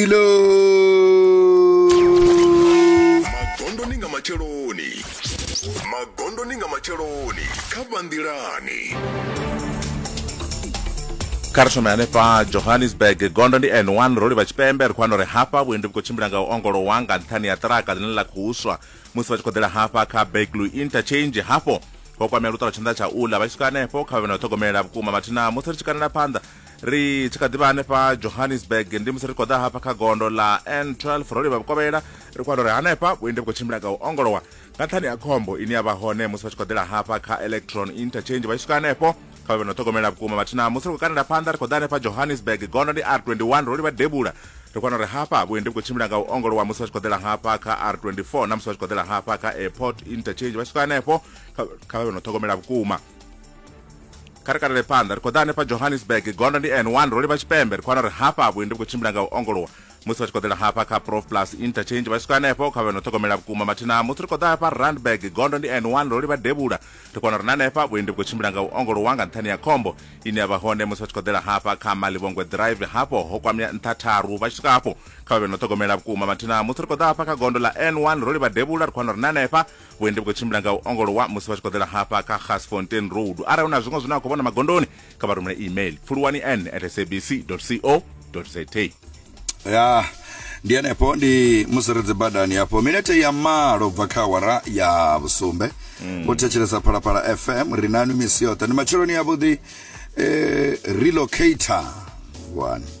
Milo magondoni nga matsheloni magondoni nga matsheloni kha vhanḓilani kha ri shome hanefha johannesburg gondo ndi n1 ro livha tshipembe ri khou wana uri hafha vhuendi vhu khou tshimbila nga u ongolowa nga nṱhani ya ṱiraka ḽine ḽa khou swa musi vha tshi khou ḓela hafha kha baglu interchange hafho ho kwamea luṱolo tshanḓa tsha ula vha tshi swika hanefho kha vha vhe na u ṱhogomela vhukuma mathina musi ri tshi kanela phanḓa ri tshi kha ḓivha hanefha johannesburg ndi musi ri khou ḓa hafha kha gondo ḽa n12 ro livha vhukovhela ri khou wana uri hanefha vhuendi vhu khou tshimbila nga u ongolowa nga nṱhani ya khombo ine ya vha hone musi vha tshi khou ḓela hafha kha electron interchange vha tshi swika hanefho kha vhe no ṱhogomela vhukuma vhathu na musi ri khou kanela phanḓa ri khou ḓa hanefha johannesburg gondo ndi r21 ro livha devhula ri kwana uri hafha vhuendi vhu khou tshimbila nga u ongolowa musi vha tshi khou ḓela hafha kha r24 na musi vha tshi khou ḓela hafha kha airport interchange vha tshi khou hanefho kha vha vhe no ṱhogomela vhukuma kha ri kalele phanḓa ri khou ḓa hanefha johannesburg gondo ndi n 1 ro livha tshipembe ri khou wana uri hafha vhuendi vhu khou tshimbila nga u ongolowa musi vha tshi khou ḓela hafha kha prof plus interchange vha swika hanefho kha vhe no ṱhogomela vhukuma mathina musi ri khou ḓa hafha randburg gondo ndi n 1 ro livha devhula ri kona uri na hanefha vhuendi vhu khou tshimbila nga u ongolowa nga nṱhani ya khombo ine ya vha hone musi vha tshi khou ḓela hafha kha malivhongwe drive hafho ho kwamea nṱha tharu vha tshi swika hafho kha vha vhe no ṱhogomela vhukuma mathina musi ri khou ḓa hafha kha gondo ḽa n 1 ro livha devhula ri khou wana uri na hanefha vhuendi vhu khou tshimbila nga u ongolowa musi vha tshi khou ḓela hafha kha gasfontain road arali hu na zwiṅwe zwine a khou vhona magondoni kha vha rumele email pfuluwani n at sabc co za ya ndi henefho ndi musi ri dzibadani hafho minete ya malo bva kha awara ya vhusumbe mm. vho thetshelesa phalaphala fm ri nanu misi yoṱhe ndi matsheloni yavhuḓi eh, relocator one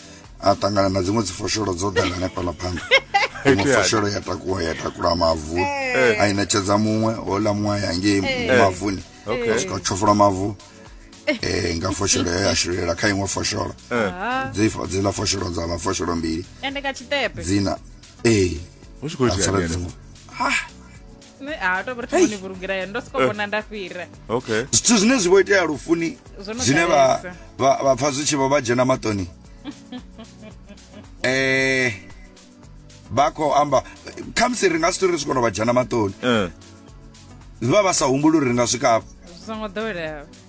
a ṱangana na dziṅwe dzi fosholo dzo ḓala hanefhala phanḓa iṅwe fosholo ya takuwa ya takula mavu eh. a i ṋetshedza muṅwe hola muṅwe a ya ngei eh. mavuni a swika tshofola mavu eh nga fosholo ya eh, shilela kha iṅwe fosholo dzi dzi la fosholo dza la fosholo mbili ende ka tshitepe dzina eh hu tshi khou itea ha nṋe a to vha ri vhoni vhulugela ya ndo soko eh. vhona nda fhira okay zwithu zwine zwi vho itea lufuni zwine vha vha pfa zwi tshi vho vha dzhena maṱoni eh vha khou amba khamusi ri nga si tori ri swikono vha dzhena maṱoni eh. vha vha sa humbuli uri ri nga swika afho zwi songo ḓoweleaho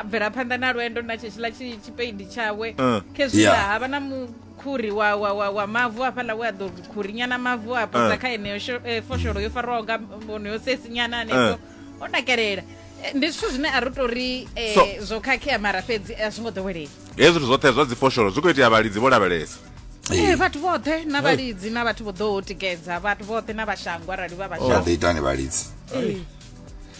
a bvela phanḓa na lwendo na tshetshiḽa tshi- tshipeidi tshawe Eh. khezwiḽa Yeah. havha na mukhuri wa, wa, wa, wa mavu hafhaḽa we a ḓo khurinyana mavu a posa Eh. kha eneyo sho- eh, fosholo yo faraho nga onoyo sesinyana hanefho o nakelela Eh, ndi zwithu zwine a ri tou ri eh, So- zwo khakhea mara fhedzi a zwi ngo ḓowelea hezwi zwithu zwoṱhe zwa dzifosholo zwi khou itea vhalidzi vho lavhelesa Eh, vhathu vhoṱhe na vhalidzi na vhathu vho ḓo tikedza vhathu vhoṱhe na vhashango arali vha vha vha shango ḓo itani vhalidzi Eh.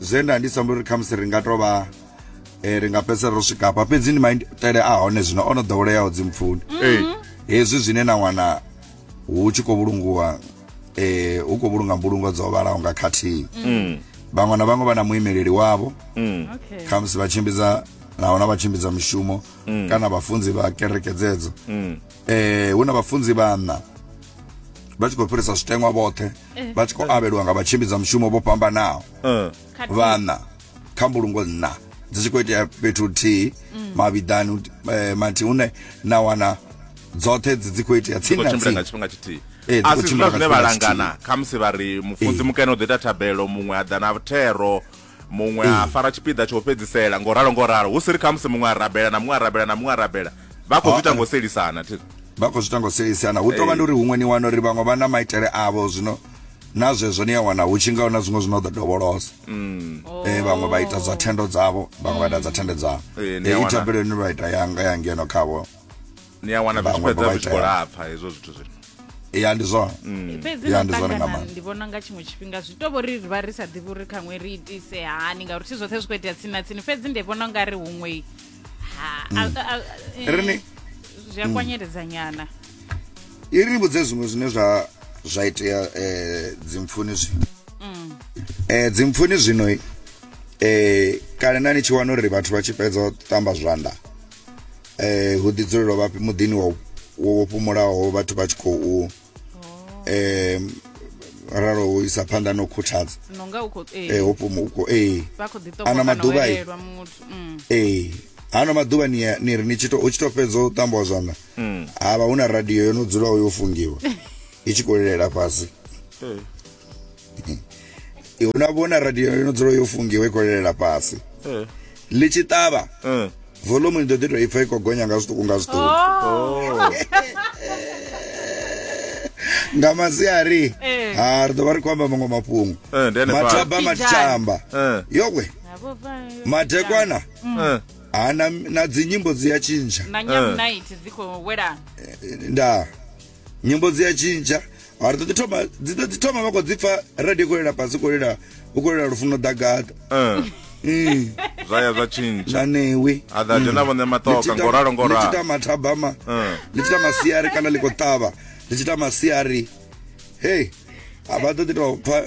zwe nda ndi samba uri khamusi ri nga to vha eh, ri nga fhedzisela ro swika hafha fhedzi ndi maitele a hone zwino o no ḓoweleaho dzimpfuni Ee. hezwi zwine na wana hu tshi khou vhulungiwa eh, hu khou vhulunga mbulungo dzo vhalaho nga khathihi Mm. vhaṅwe na vhaṅwe vha na muimeleli wavho Mm. Okay. khamusi vha tshimbidza nahona vha tshimbidza mishumo Mm. kana vhafunzi vha kereke dzedzo Mm. eh hu na vhafunzi vhanna vha tshi khou fhirisa zwitengwa vhoṱhe eh. vha tshi khou avhelwa nga vhatshimbidzwa mushumo vho fhambanaho eh. vhanna kha mbulungo nna dzi tshi khou itea fhethu huthihi mm. mavhiḓani eh, mathi hune na wana dzoṱhe dzi dzi khou itea tsini na tsini Eh, a si zwina zwine vha langana khamusi vha ri mufunzi eh. mukene u ḓo ita thabelo muṅwe a ḓa na thero muṅwe a fara tshipiḓa tsho fhedzisela ngo ralo ngo ralo hu si ri khamusi muṅwe a rabela na muṅwe a rabela na muṅwe a rabela vha khou zwi ita ngo selisana thi vha khou zwi ita ngo selisana hu tovha ndi uri huṅwe ni wana uri vhaṅwe vha na maitele avho zwino na zwezwo ni a wana hu tshi ngaho na zwiṅwe zwine ḓo dovholosa mm. eh, vhaṅwe vha ita dza thendo dzavho vhaṅwe vha ita dza thendo dzavho eh, eh, i thabelo ni vha ita yanga ya ngeno khavho ni ya wana zwi fhedza zwi khou lapfa hezwo zwithu zwino ya ndi zwone mm. fhedzi na ṱangana ndi vhona nga tshiṅwe tshifhinga zwi to vhori ri vha ri sa ḓivhi uri khaṅwe ri itise hani ngauri thi zwoṱhe zwi khou itea tsini na tsini fhedzi ndi vhona nga ri huṅwe ha mm. eh, zwi a mm. kwanyeledza nyana i ri vhudze zwiṅwe zwine zwa zwa itea um eh, dzimpfuni zwino um eh, dzimpfuni zwino um kale na ni tshi wana uri vhathu vha tshi fhedza u ṱamba zwanḓa eh hu ḓi dzulelwa vhafhi muḓini wa wo fhumulaho vhathu vha tshi khou eh ralo u isa phanḓa na u khuthadza no nga u khou eh, eh ho fhuma u khou eh vha khou ḓi Ano ṱokoana maḓuvha i- welelwa muthu mm. ee hano maḓuvha ni ya- ni ri ni tshi to- u tshi to fhedza u tambiwa zwanḓa havha hu na radio yo no dzulaho yo fungiwa i tshi khou lilela fhasi i huna vhona radio ino dzula yo fungiwa i khou lelela fhasi eh. ḽi tshi ṱavha eh. volume ni ḓo ḓi tou i pfa i khou gonya nga zwiṱuku nga zwiṱuku oh. nga masiari eh. ha ah, ri ḓo vha ri khou amba maṅwe mafhungo mathaba matshamba yowe madekwana mm. ha na dzinyimbo dzi ya tshintsha nda nyimbo dzi a tshintsha mara ṱoḓi thoma dzi ḓo dzi thoma vha khou dzi pfa radio khou lela fhasi khou lela u khou lela lufuno ḓagaḓa Eh, Mm, zwa ya zwa tshintsha na newe a ḓa dzhena vhone maṱoka ngo ralo ngo ralo litshita mathabama Mm. litshita masiari kana liko tava litshita masiari hey a vha ḓo ḓi tou pfa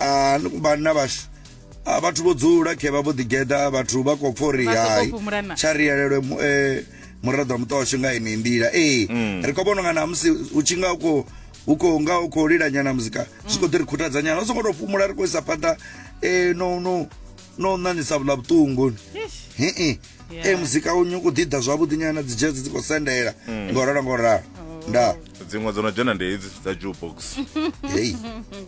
a ni vhanna vhashu a vhathu vho dzula khe vha vho ḓi geḓa vhathu vha khou pfa uri Vha sokou hai fhumulana. tsha ri yelelwe mu- eh, muraḓo wa muṱa washu nga ini nḓila ee Mm. ri khou vhona nga namusi u tshi nga u khou u khou nga u khou lilanyana muzika zwi khou ḓi ri khuthadza nyana u songo tou fhumula ri khou isa phanḓa eh, no no no ṋaṋisa vhula vhuṱungu hii Yeah. ee muzika unyu u khou ḓi ḓa zwavhuḓi nyana dzi dzhedzi dzi khou sendela Mm. ngo ralo ngo ralo nda dziṅwe dzo no dzhena ndi hedzi dza jukebox hei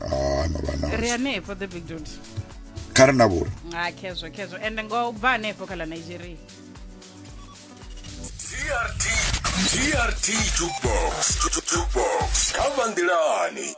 ah no vha na ri hanefho the big dude kha ri na vhuri ha khezwo khezwo ende ngo u bva hanefho kha ḽa nigeria trt trt jukebox jukebox kha vanḓilani